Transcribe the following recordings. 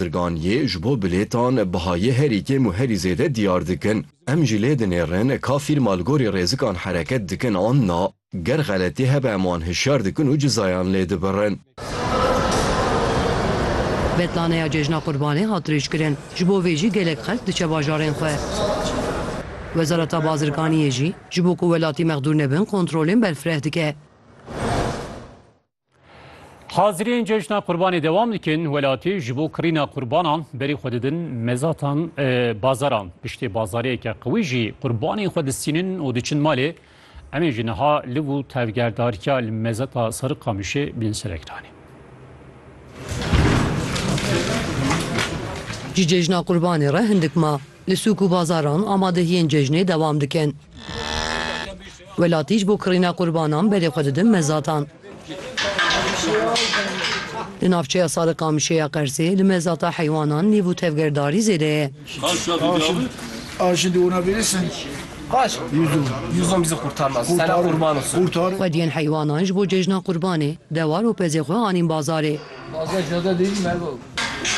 Pirgan yê ji bo bilêtan bihayê herî kêm û herî zêde diyar dikin. Em jî lê dinêrin ka fîrma li gorî rêzikan hereket dikin an na. Ger xeletî hebe em wan hişyar dikin û cizayan lê dibirin. Betlaneya Cejna Qurbanê hat dirêjkirin, ji bo vê jî gelek xelk diçe bajarên xwe. Wezareta Bazirganiyê jî ji bo ku welatî mexdûr nebin kontrolên berfireh dike. Haziriyên cejna qurbanê dewam dikin, welatî ji bo kirîna qurbanan berî xwe didin mezatan e, bazaran. Piştê bazariyeke qewî jî qurbanên xwe distînin û diçin malê. Em ê ji niha liv û tevgerdariya li mezata Sariqamişê bin ser ekranê. Ji cejna qurbanê re hindik ma. Li sûk û bazaran amadehiyên cejnê dewam dikin. Welatî ji bo kirîna qurbanan berê xwe didin mezatan. Li navçeya Sariqamişê ya Qersê li mezata heywanan nîv û tevgerdarî zêde ye. Xwediyên heywanan ji bo cejna qurbanê dewar û pezê xwe anîn bazarê.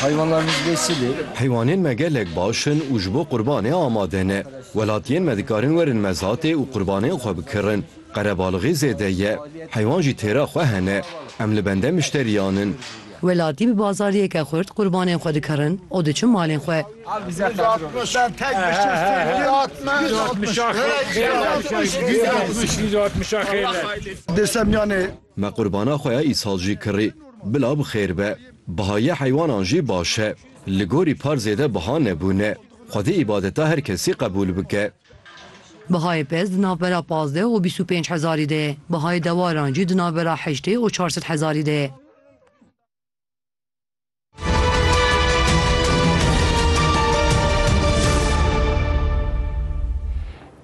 Heywanlarimiz besil e. Heywanên me gelek baş in û ji bo qurbanê amade ne. Welatiyên me dikarin werin mezatê û qurbanên xwe bikirin. Qerebalixî zêde ye. Heywan jî têra xwe hene. Em li bende mişteriyan in. Welatî bi bazariyeke xurt qurbanên xwe dikirin û diçin malên xwe. Me qurbana xwe ya îsal jî kirî. Bila bi xêr be. Bihayê heywanan jî baş e. Li gorî par zêde biha nebûne. Xwedî îbadeta her kesî qebûl bike. Bihayê pez di navbera pazdeh û bîst û pênc hezarî de ye. Bihayê dewaran jî di navbera heştê û çar sed hezarî de ye.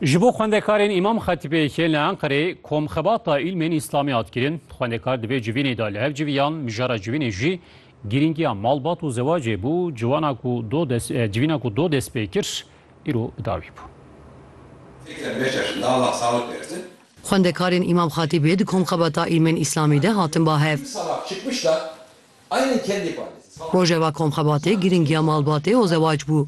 Ji bo xwendekarên Îmam Xetîbê yê li Enqerê komxebata îlmên îslamî hat kirin. Xwendekar di vê civînê de li hev civiyan, mijara civînê jî girîngiya malbat û zewacê bû, ciwana ku do dest civîna ku do dest pê kir îro bi dawî bû. Xwendekarên Îmam Xetîbê di komxebata îlmên îslamî de hatin ba hev. Rojeva komxebatê girîngiya malbatê û zewac bû.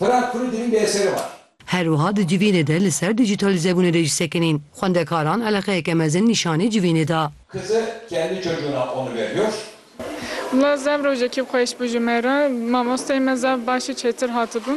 Fırat Kuru di vîn de yê serê xwe. Her wiha di civînê de li ser dîjîtalîzebûnê de jî sekinîn xwendekaran eleqeyeke mezin nîşanî civînê da. Kızı kendi çocuğuna onu veriyor. Wla zaf rojekî xweş bû ji me re. Mamosteyê me zaf baş û çêtir hatibû.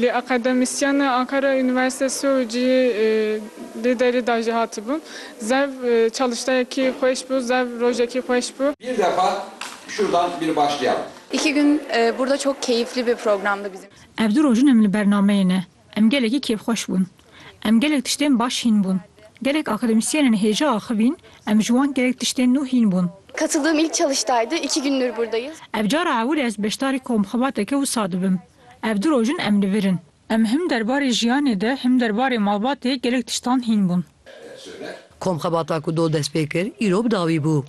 Lê akademisyenê Ankara Universitesi û cihê lê derî da jî hatibû. Zaf çalıştayekî xweş bû, zaf rojekî xweş bû. Bir defa şuradan bir başlayalım. İki gün burada çok keyifli bir programdı bizim için. Ev du rojin em li bernameyê ne. Em gelekî kêfxweş bûn. Em gelek tiştên baş hîn bûn. Gelek akademisyenên hêja axivîn, em ji wan gelek tiştên nû hîn bûn. Katıldığım ilk çalıştaydı, iki gündür buradayız. Ev cara ewilê ez beşdarî komxebateke wisa dibim. Ev du rojin em li vir in. Em him derbarê jiyanê de him derbarê malbatê gelek tiştan hîn bûn. Komxebata ku do dest pê kir, îro bi dawî bû.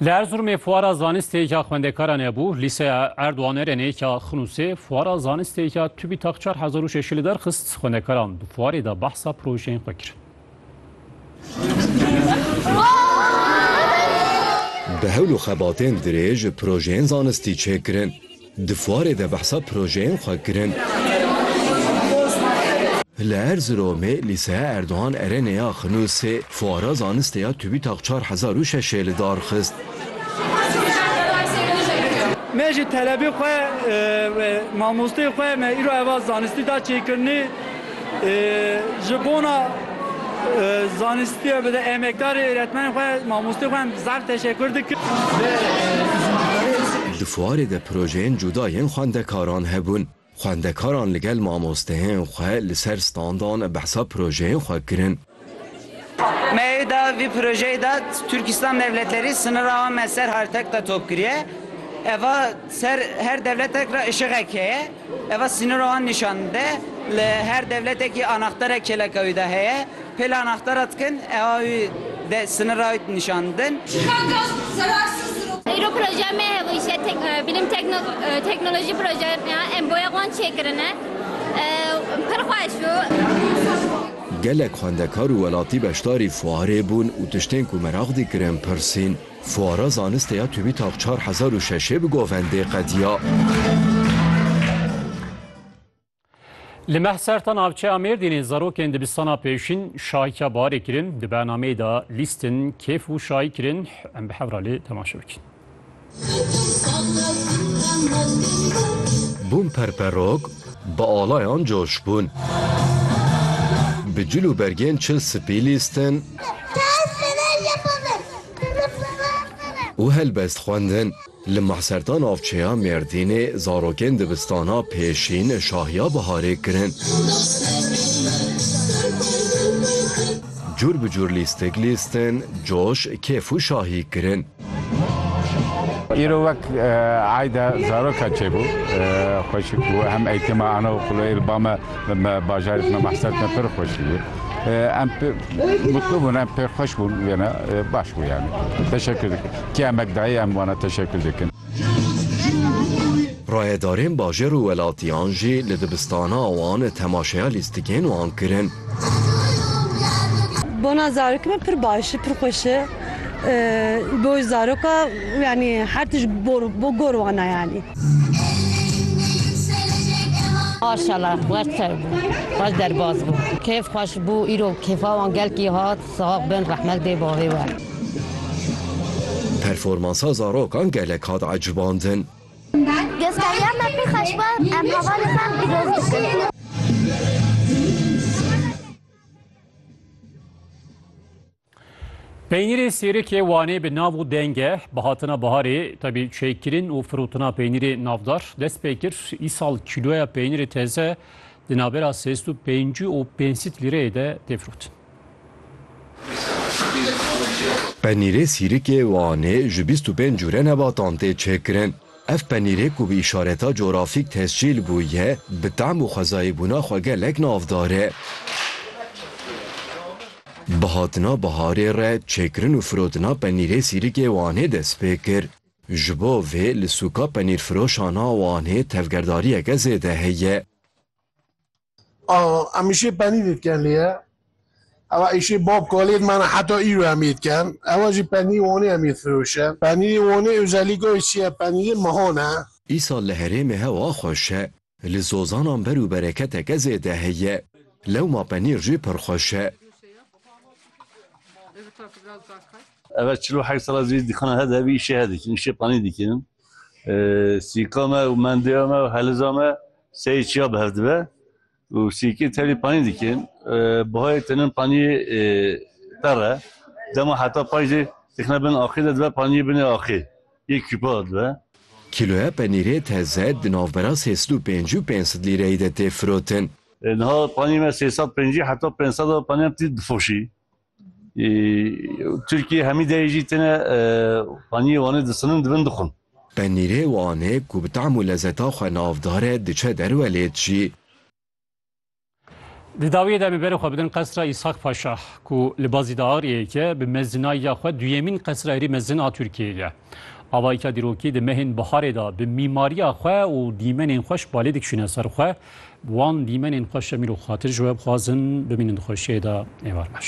Li Erzurumê fuara zanistê ya xwendekaran hebû, lîseya Erdogan Erenê ya Xinûsê fuara zanistê ya TÜBİTAK 4006 li derxist, xwendekaran di fuarê de behsa projeyên xwe kir. Bi hewl û xebatên dirêj projeyên zanistî çêkirin. Di fuarê de behsa projeyên xwe kirin. Li Erziromê Lîseya Erdogan Erenê ya Xinûsê fuara zanistê ya TÜBİTAK çar hezar û şeş ê li dar xist. Me ji telebê xwe, mamosteyê xwe me îro eva zanistî da çêkirinê. Ji bona zanistî bide emekdarê êretmenên xwe, mamosteyên xwe em zaf teşekur dikim. Di fuarê de projeyên cuda yên xwendekaran hebûn. Xwendekaran li gel mamosteyên xwe li ser standan behsa projeyên xwe kirin. Meyê de vî projeyê de Tirkistan dewleterî sinira wan me ser hertek de top kiriye. Eva ser her dewletek ra işiğek heye. Eva sinira wan nîşan dide. Li her dewletekî anaxterek kêleka wî de heye. Pêl anaxtera dikin ewa wî de sinira wî nîşan didin. Îro projeya me hevojîye Bilim Teknolojî Projeyê me ya. Em boyeg wan çêkirine. Pir xweş bû. Gelek xwendekar û welatî beşdarî fuarê bûn û tiştên ku meraq dikirin pirsîn. Fuara zanistê ya TÜBİTAK çar hezar û şeş ê bi govendê qediya. Li Mehserta navçeya Mêrdînê zarokên dibistana pêşîn şahîka barê kirin. Di bernameyê de lîstin, kêf û şahî kirin. Em bi hev re lê temaşe bikin. Bûn perperok, bi alayan coş bûn. Bi cil û bergên çil spî lîstin. Û helbest xwendin. Li Mahserta navçeya Mêrdînê zarokên dibistana pêşîn şahiya biharê kirin. Cûr bi cûr lîstik lîstin, coş, kêf û şahî kirin. Îro wek eyda zaroka çêbû xweşik bû hem eğîtima ana û xuleyê li ba me li me bajarê me Mahsert me pir xweşî bû. Em mutlu bûn em pê xweş bûn wêne baş bû yanî. Teşekkür dikim. Kê emek dayê em wana teşekkür dikin. Rayedarên bajêr û welatiyan jî li dibistana wan temaşeya lîstikên wan kirin. Bona zarokê me pir baş e, pir xweş e. bo zaroka yanî her tişt bo gor wana yanî. Maşala wer ser bû wer derbas bû. Keyf xweş bû îro kêfa wan gelkî hat sax bin rehmet bê bavê we. Performansa zarokan gelek hat ecibandin. Gösteriya me pê xweş bû em hevalê xwe em pîroz dikin. Peynîrê sêrikê Wanê bi nav û denge bi hatina biharê tebî çêkirin û firotina peynîrê navdar dest pê kir. Îsal kîloya peynîrê teze di navbera sêst û pêncî û pênsît lîreyê de tê firotin. Penîrê sîrikê Wanê ji bîst û pênc cure nebatan tê çêkirin. Ev penîrê ku bi îşareta corafîk tescîl bûye, bi tam û xwezayê bûna xwe gelek navdar e. Bi hatina biharê re çêkirin û firotina penîrê Sîrikê Wanê dest pê kir. Ji bo vê li sûka penîrfiroşan a Wanê tevgerdariyeke zêde heye. Em îşê penî dê dikin lê ye ew îşê bab kalê dimane heta îro em yê dikin. Ew jî penî Wanê em yê difiroşin. Penîrê Wanê ozellîka wê çi ye? Penîrê mehan e. Îsal li herêmê hewa xweş e. Li zozanan ber û bereketeke zêde heye. Lewma penîr jî pir xweş e. Ev çil û heft sal e zî dîkana he de vî îşê he dikin. Îşê penî dikin. Sîka me û mendiya me û heliza me. Sey çiya bi hev dibe û sîkê terî panî dikin. Bihayê tenin panîyê terr e. Dema heta paj de dixine bin axê de dibe panîyê binê axê yê kûpa dibe. Kîloya penîrê teze di navbera sê sed û pêncî û pênc sed lîreyî de tê firotin. Niha panîyê me sê sed û pencî heta pênc sed a panîyan tî difoşî. Tirkî hemî deyê jî têne paniyê Wanê disinin dibin dixwin. Penîrê Wanê ku bi tam û lezeta xwe navdar e diçe derwe lê dijî. Di dawiyê de em ê berê xwe bidin qesra Îshak Paşa ku li Bazî Dağariyê ye, bi mezinayîya xwe duyemîn qesra herî mezin a Tirkiyeyê ye. Avayîka dîrokî di mehên biharê de bi mîmariya xwe û dîmenên xwe ji balê dikişîne ser xwe. Wan dîmenên xwe şemîl û xatir ji we bixwazin. Bimînin di xweşiyê de êvar baş.